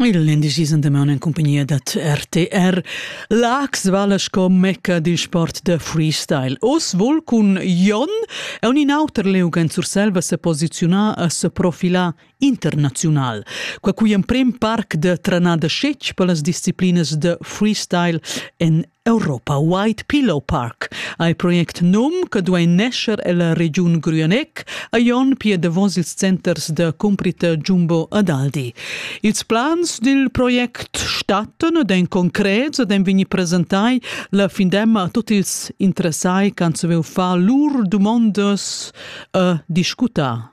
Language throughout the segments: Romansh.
Il indicisen damaun en compagnia dat RTR. L'Ax vala sco mecca dil sport da freestyle. Oz vol cun Jon e un in auter Leugen Surselva se posiziunar a se profila internazional. Qua cui emprem parc de tranada scetg per las disciplinas de freestyle en Europa White Pillow Park ei project num che duei nescher ella regiun Grüenegg a Jon pia davos ils centers da cumprita Jumbo ad Aldi. Ils plans dil project stattan ed ein concrets ed ein vegni presentai la findemma a tutti ils interessai che han saviu far lur dumondas e discutar.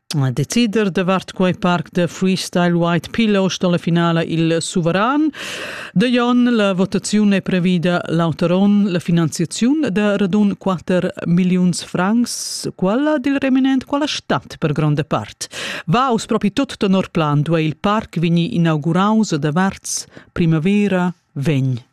decider davart quei parc de freestyle White Pillows dalla finala il suveran. De Jon la votaziun è previda l'auteron la finanziaziun de radun 4 milliuns francs, quella dil reminent quella stat per gronda part. Va us propi tot tenor plan duei il parc vegni inauguraus de varts primavera vegn.